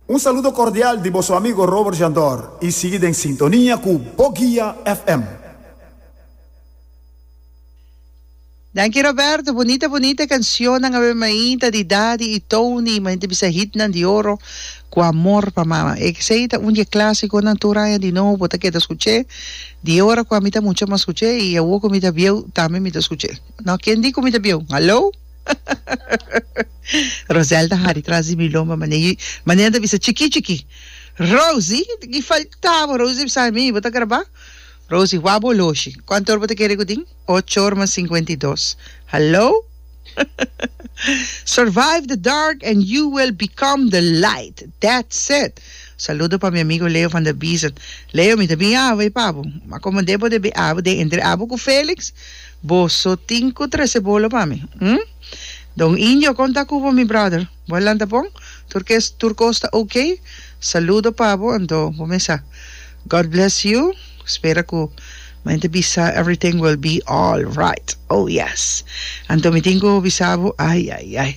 Un saludo cordial di boso amigo Robert Jandor y sigui den sintonia cu Bo Guia FM. Danki Roberto, bunita bunita cancionnan awe mainta di Daddy y Tony, mainta bisa hitnan di oro cu Amor pa mama. Exei ta un di e clasiconan tur aña di nou bo ta keda scuch'e, di e ora cu ami ta mucha mas scuch'e y awo cu mi ta bieu tambe mi ta scuch'e. No, ken di cu mi ta bieu? Hallo! Roselda hari tras di mi lomba mane y mane ta bisa chiki chiki Rosy y faltaba Rosy ta bisa mi bo ta graba Rosy wak bo oloshi cuanto or bo ta kere cu tin ocho or mas cincuenta y dos hallo Survive the dark and you will become the light that said saludo pa mi amigo Leo van der Biezen Leo mi ta bin abo e pa bo ma como den bo debe abo den entre abo cu Felix Boso tin cu trece bolo pa mi, hm? Don Indio, con ta cu bo mi brother? Bo a lanta bon? Tur kes, tur cos ta ok? Saludo pa bo anto bo mesa. God bless you. Spera cu mente bisa everything will be alright. Oh yes. Anto mi tin cu bisa bo, ay, ay, ay.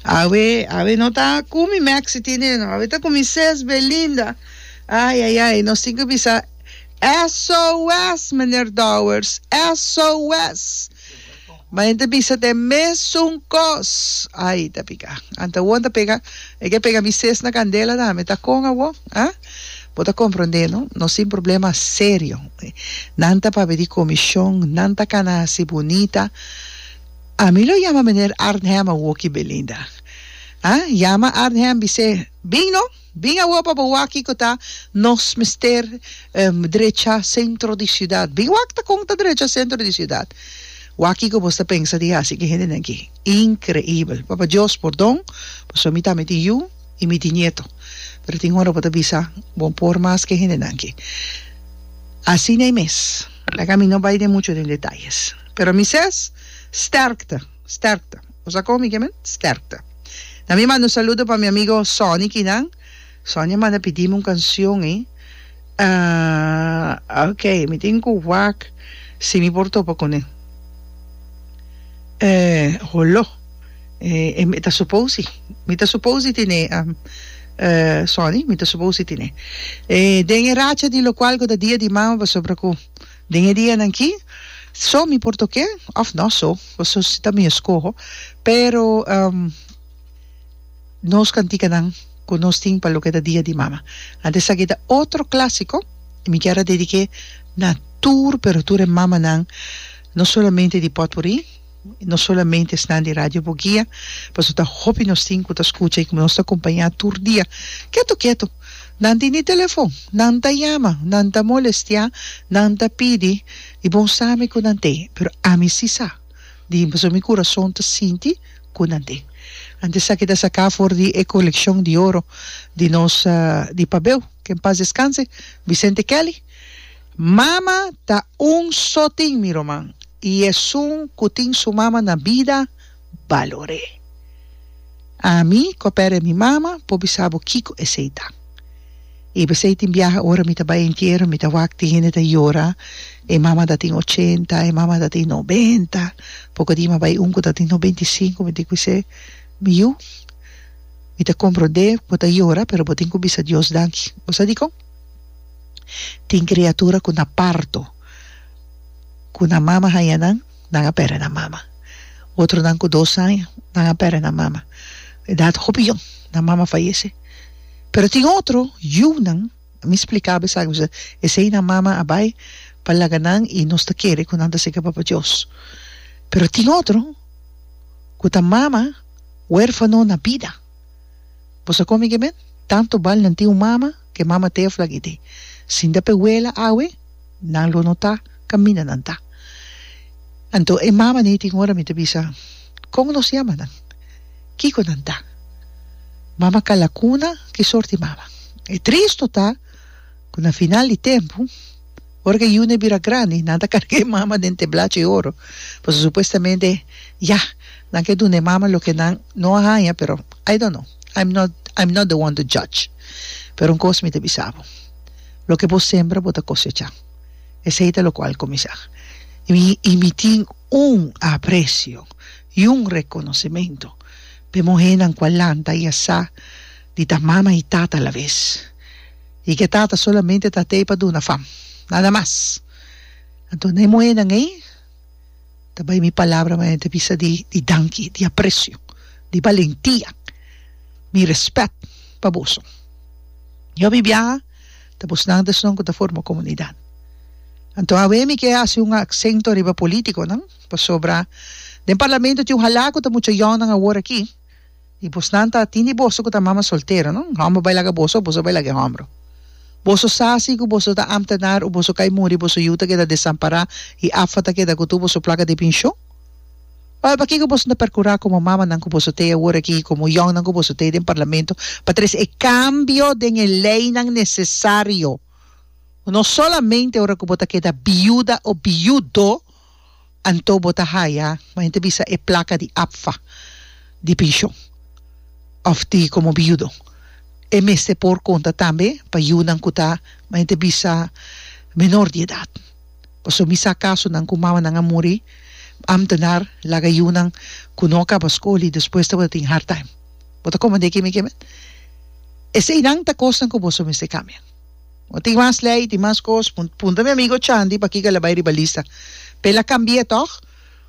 Awe, awe no ta cu mi Maxi Tinino, awe ta cu mi Ces Belinda. Ay, ay, ay. Nos tin cu bisa. SOS Meneer Dowers SOS Ma yen ta bisa t'e mesun kos Ai ta pika Anta won ta pega E ke pega mi ses na kandela tambe ta kon awor ha Bo ta komprondé no Nos tin problema serio Nan ta papia di komishon Nan ta kana hasi bunita Ami lo yama Meneer Arnhem awor ki Belinda ha Yama Arnhem bis'é Bin no. Bin awor pa bo wak kiko ta nos mester drecha sentro di siudat. Bin wak ta kon ta drecha sentro di siudat. Wak kiko nos ta pensa di hasi ki hendenan aki. Inkreibel. Papa Dios, pordon, pasobra mi tambe tin yu i mi tin nieto. Pero tin ora bo ta bisa, Bo por mas ke hendenan aki. Asina ei mes. Laga mi no bai den mucho den detayes. Pero mi ses, sterkte. Sterkte. Bo sa kon mi ke men? Sterkte. Na mi manda un saludo pa mi amigo Sonny Kinan. Sonny a manda pidi mi un kansjon ei. Ah, ok, mi tin ku wak si mi por topa kuné. Eh, holo, eh, mi ta supos si. Mi ta supos di tiné, ehm, Sonny, mi ta supos di tiné. Eh, den e racha di lokual ku ta dia di mama pasobra ku. Den e dianan ki, so mi por tok'é òf nò so, pasobra si ta mi eskoho, pero nos kantikanan ku nos tin pa loke ta Dia di Mama. Anto esaki ta otro klásiko i mi kier a dedik'é na tur, pero tur e mamanan, no solamente di Pòtpurì. No solamente esnan di Radio Bugia, paso ta hopi nos tin cu ta scucha y cu nos ta acompaña tur dia. Keto, keto. Nan tin e telefon, nan ta yama, nan ta molestia, nan ta pidi y bon sa mi cu nan t'e, pero ami si sa di den paso mi curason ta sinti cu nan t'e. Antes esaki ta saca for di e coleccion di oro di nos di pabeu, que en paz descanse, Vicente Kelly. Mama ta un so tin mi ruman y esun cu tin su mama na bida balor'e. Ami cu a perde mi mama por bisa bo kico esey ta. Y p'esey tin biaha ora mi ta bay entierro mi ta wak tin hende ta yora e mama ta tin ochenta, e mama ta tin nobenta, poco di mi a bay un cu ta tin nobenta y cinco mi tin cu bis'e, Mi yu, mi ta compro def, bo ta yora pero bo tin cu bisa Dios danki. Bo sa dicon? Tin kriatura ku na parto ku nan mama haña nan, nan a pèrdè nan mama. Otronan ku dos aña nan a pèrdè nan mama. Edat hopi yòn nan mama fayese. Pero tin otro yunan, mi spliká besaki boso, esei nan mama a bai pa laga nan i nos ta kere ku nan ta sega Papa Dios. Pero tin otro ku ta mama wérfano na bida. Bo sa komi ke men? Tanto bal nan tin un mama ke mama tea fla gidi. Sinda pe wela awe nan lo no ta kaminda nan ta. Anto e mama nei tin ora mi ta bisa kon nos yama nan? Kiko nan ta? Mama kala kuna ki sort di mama? E tris no ta? Cu na final di tempu, ora cu e yune bira grandi, nan ta carga e mama den teblacha di oro, pasobra supuestamente, ya, nan ke duna e mama loke nan no a haya, pero I don't know, I'm not, I'm not the one to judge. Pero un cos mi ta bisa bo, loke bo sembra bo ta cosecha, esey ta loke bo a cuminsa. Y mi, y mi tin un aprecio y un reconocimento pa e muhernan cu a lanta y a sa di ta mama y tata alavez. I ke tata solamente ta tei pa duna fam, nada mas. Anto na e muhénan ei ta bai mi palabra ma nan ta bisa di danki, di apresio, di balentia, mi rèspèt pa boso. Yo mi biaha ta bosnan ta esnan ku ta forma komunidat. Anto awe mi ke hasi un aksento riba polítikonan, pasobra den parlamento tin un halá ku ta mucha yònan awor aki, Di busnan ta tin di boso ku ta mama soltero, no? Un hòmber bai laga boso òf boso bai laga e hòmber. Boso sa si ku boso ta amnta dar òf boso kai muri boso yu ta keda desampará i Afa ta keda ku tur boso plaka di pinshon? Wèl, pakiko boso no ta perkurá komo mamanan ku boso tei awor aki i komo yònnan ku boso tei den parlamento pa tres e kambio den e leinan nesesario? No solamente ora ku bo ta keda biuda òf biudo, Anto bo ta haya, men ta bisa e placa di APFA di pension of di como biudo. E mester por conta tambe pa yiunan cu ta, men ta bisa, menor di edad. Pasobra mi sa casonan cu mamanan a muri, ambtenaar laga yiunan cu no a caba school y despues tabata tin hard time. Bo ta comande keme keme? Eseinan ta cosnan cu boso mester cambia. No tin mas lei, tin mas cos. Punta mi amigo Chandy pa kico el a bay riba lista. Pa el a cambie toch?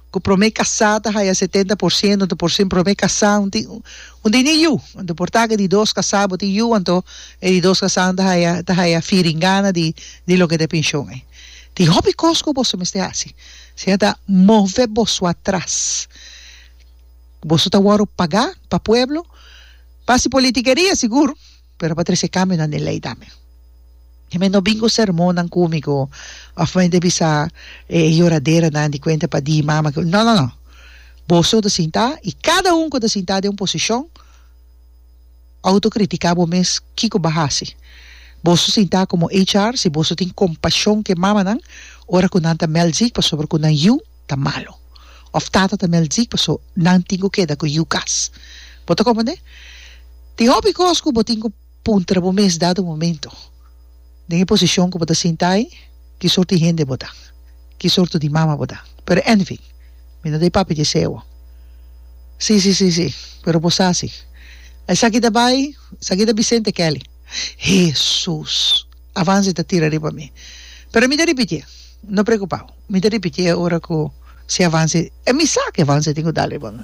Cu prome casa ta haya setenta por ciento, anto por sin prome casa un tin un tin di yu. Anto por ta cu e di dos casa bo tin yu anto e di dos casanan ta haya ta haya firingana di di loke ta e pension ey. Tin hopi cos cu boso mester haci. Siña ta move boso atras. Boso ta worde paga pa pueblo pa si politiqueria sigur. Pero pa trece cambio na ni ley tambe. He meen no bingo sermonnan cumigo of meen te bisa e yoraderanan di cuenta pa di mama que no no no boso ta sinta y cada un cu ta sinta den un posicion auto critica bo mes kico ba haci boso sinta como HR si boso tin compasion ke mamanan ora cu nan ta meld ziek pasobra cu nan yu ta malo of tata ta maldí paso nan tin cu keda cu yu cas. Bo ta comprende? Tin hopi cos cu bo tin cu puntra bo mes dado momento, Den e posicion cu bo ta sinta ai, ki sorto di hende bo ta? Ki sorto di mama bo ta? Pero anyway, mi no ta e papi di eseo. Sí, sí, sí, sí, pero bo sa si esaki ta bai, esaki ta Vicente Kelly. Hesus! Avanza e ta tira riba mi. Pero mi ta ripitié. No preokupá. Mi ta ripitié ora ku si Avanza. Mi sa ku Avanza tin ku dal riba mi.